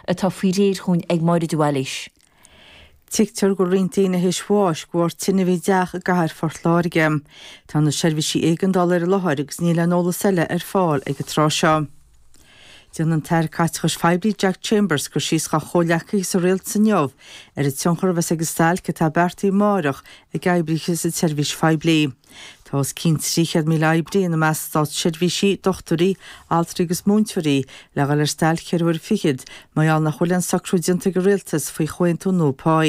atá faoi réir dhúinn ag Máire de Bhailís. Tuigtear go bhfuil roinnt daoine théis bháis go bharr tine a bhí i dteach i gcathair Phort Láirge. Tá na seirbhísí éigeandála ar an láthair agus níl aon eolas eile ar fáil ag an tráth seo. Déanfaidh an tAire Caiteachais Phoiblí Jack Chambers cur síos dá chomhghleacaithe sa rialtas inniu ar an tionchar a bheas ag an stailc atá beartaithe amárach ag oibrithe sa tseirbhís phoiblí. Tá os cionn 300,000 oibrí, ina measc státseirbhísigh, dochtúirí, altraí agus múinteoirí, le dhul ar stailc ceithre huaire fichead, mar gheall nach bhfuil aon socrú déanta ag an Rialtas faoi chomhaontú nua pá.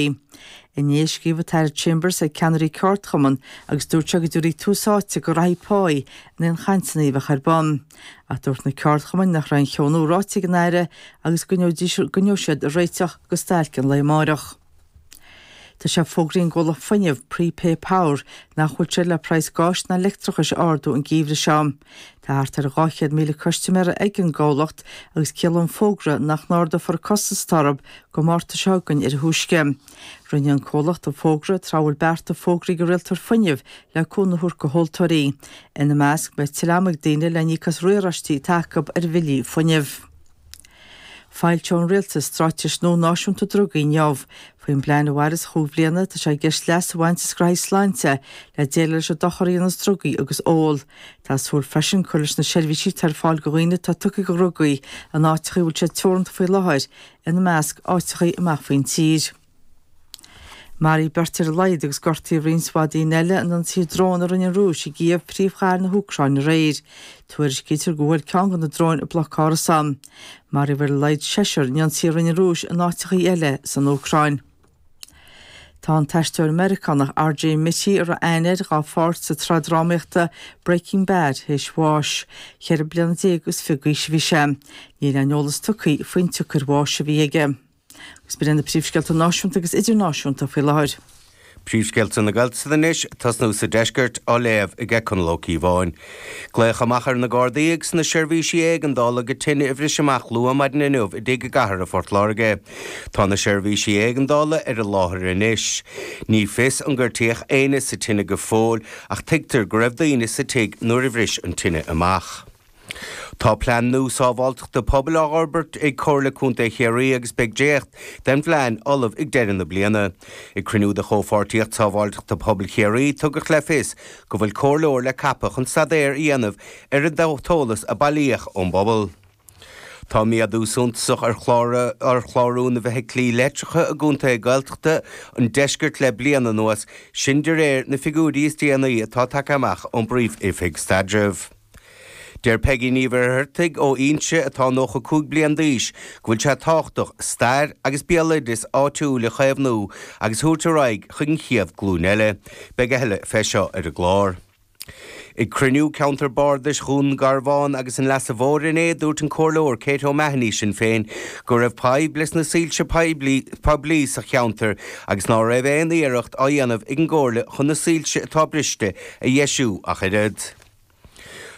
Inné a scríobh an tAire Chambers chuig ceannairí ceardchumann agus dúirt sé go dtabharfaí tús áite go ghraithí pá in aon chainteanna a bheadh ar bun. Ach dúirt na ceardchumainn nach raibh aon cheo nua ráite ag an Aire agus go gcoinneodh siad ag réiteach go stailc an lae amáireach. Tá sé fógraí ag an gcomhlacht fuinnimh Prepay Power nach bhfuil siad le praghas gáis ná leictreachais a ardú an geimhreadh seo. Tá thart ar 200,000 custaiméir ag an gcomhlacht agus ciallaíonn an fógra nach n-ardófar costas orthu go Márta seo chugainn ar a thúisce. Rinne an comhlacht an fógra tráth a bhfuil bearta fógraí ag an rialtóir fuinnimh le cúnamh a thabhairt go thomhaltóirí, ina measc, go mbeidh tuilleadh ama ag daoine le n-íoc as riaráistí atá acu ar bhillí fuinnimh. Foilseoidh an Rialtas Stráitéis nua Náisiúnta Drugaí inniu. Faoin bplean a mhairfeas chúig bhliana, tá sé i gceist leas a bhaint as graithí sláinte le déileáil leis an dochar a dhéanas drugaí agus ól. Tá súil freisin cur leis na seirbhísí atá ar fáil go dhaoine atá tugtha go dhrugaí in áiteachaí a bhfuil siad teoranta faoi láthair, ina measc, áiteachaí amach faoin tír. Maraíodh beirt ar a laghad agus gortaíodh roinnt mhaith daoine eile in ionsaí drón a rinne an Rúis i gCív, príomhchathair na hÚcráine aréir. Tuairiscítear gur bhuail ceann de na dróin bloc árasán. Maraíodh ar a laghad seisear in ionsaí a rinne an Rúis in áiteachaí eile san Úcráin. Tá an t-aisteoir Meiriceánach R. J. Mitte, a raibh aithne air dhá pháirt sa tsraith drámaíochta Breaking Bad, théis bháis. Ceithre bliana déag is fiche d'aois a bhí sé. Níl aon eolas tugtha faoin tsiocair bháis a bhí aige. Is b'in iad na príomhscéalta náisiúnta agus idirnáisiúnta faoi láthair. Príomhscéalta na Gaeltachta anois, ag tosnú sa deisceart, á léamh ag Conall Ó Cíobháin. Glaodh amach ar na Gardaí agus na seirbhísí éigeandála go tine a bhris amach luath maidin inniu i dtigh i gcathair Phort Láirge. Tá na seirbhísí éigeandála ar an láthair anois. Ní fios ar gortaíodh éinne sa tine go fóill ach tuigtear go raibh daoine sa tigh nuair a bhris an tine amach. Tá Plean nua Sábháilteachta Pobail á fhorbairt ag Comhairle Contae Chiarraí agus beidh dréacht den phlean ullamh ag deireadh na bliana. Ag cruinniú de Chomhpháirtíocht Sábháilteachta Pobail Chiarraí, tugadh le fios go bhfuil comhairleoir le ceapadh chun staidéar a dhéanamh ar an t-eolas a bailíodh ón bpobal. Tá méadú suntasach ar chlárú na bhfeithiclí leictreacha i gcontaetha Gaeltachta an deiscirt le bliain anuas, sin de réir na figiúirí is déanaí atá tagtha amach ón bPríomh-Oifig Staidrimh. Deir Peggy Ní Mhuircheartaigh ó Fhínse, atá 95 bliain d'aois, go bhfuil sé tábhachtach stair agus béaloideas áitiúil a chaomhnú agus a thabhairt ar aghaidh chun an chéad glúin eile. Beidh a thuilleadh fé seo ar an gclár. Ag cruinniú Ceantar Bardais Dhún Garbhán agus an Leasa Mhóir inné, dúirt an Comhairleoir Kate O'Mahony, Sinn Féin, go raibh fadhb leis na soilse poiblí sa cheantar agus ná raibh aon iarracht á dhéanamh ag an gComhairle chun na soilse atá briste a dheisiú ach oiread.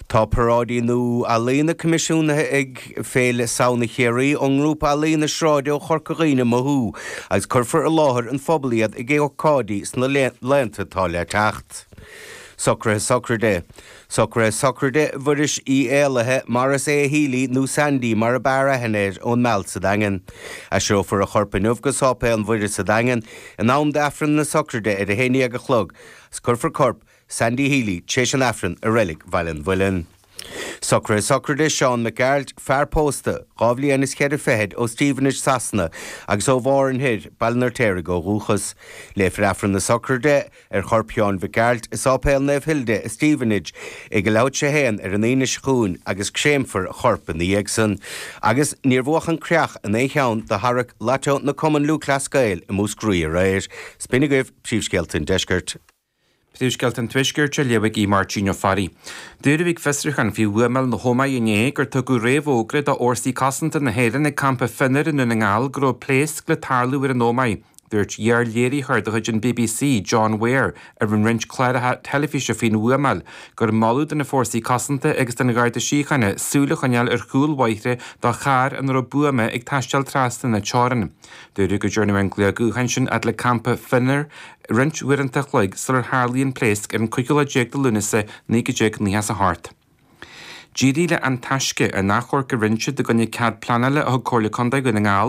Tá paráidí nua ealaíona coimisiúnaithe ag Féile Samhna Chiarraí ón ngrúpa ealaíona sráide ó Chorca Dhuibhne Mothú agus cuirfear i láthair an phobail iad ag ócáidí sna laethanta atá le teacht. Socruithe Sochraide Socruithe sochraide Mhuiris Uí Éallaithe, Maurice A. Healy, nó Sandy mar ab fhearr aithne air, ón Meall sa Daingean. Aistreofar a chorp inniu go Sáipéal Naomh Muire sa Daingean in am d'Aifreann na Sochraide ar a haon déag a chlog agus cuirfear corp Sandy Healy, tréis an Aifrinn i Reilig Bhaile an Mhuilinn. Socruithe Sochraide, Seán Mac Gearailt, fear pósta, dhá bhliain is cheithre fichid, ó Stevenage, Sasana, agus ó Bharr an Thoir, Baile an Fheirtéaraigh ó dhúchas. Léifear Aifreann na Sochraide, ar chorp Sheáin Mhic Gearailt, i Sáipéal Naomh Hilda, i Stevenage, ag leath tar éis a 1, ar an Aoine seo chugainn, agus créamfar a chorp ina dhiaidh san. Agus níor buadh an creach in aon cheann de tharrac Lató na gCumann Lúthchleas Gael i Múscraí aréir. Sin iad agaibh Príomhscéalta an Deiscirt. Príomhscéalta an Tuaiscirt á léamh ag Máirtín Ó Fearraigh. Dúradh ag fiosrúchán faoi bhuamáil na hÓmaí inné gur tugadh réamhfhógra do Fhórsaí Cosanta na hÉireann ag Campa Fionnair i nDún na nGall go raibh pléasc le tarlú ar an Ómaigh. Dúirt iar-léiritheoir de chuid an bbc, John Weir, a rinn roinnt cláracha teilifíse faoin bhuamáil gur moladh do na Fórsaí Cosanta agus don Gharda Síochána súil a choinneáil ar chúl bhóithre do charr ina raibh buama ag taisteal trasna na teorann. Dúradh go dtearnadh an glaoch gutháin sin fhad le campa Fionnair roinnt uaireanta a chloig sular tharlaigh an pléasc ar an 15 lá de Lúnasa 1998. D'éirigh le An Taisce an achomharc a rinne siad i gcoinne cead pleanála a thug Comhairle Contae Dhún na nGall,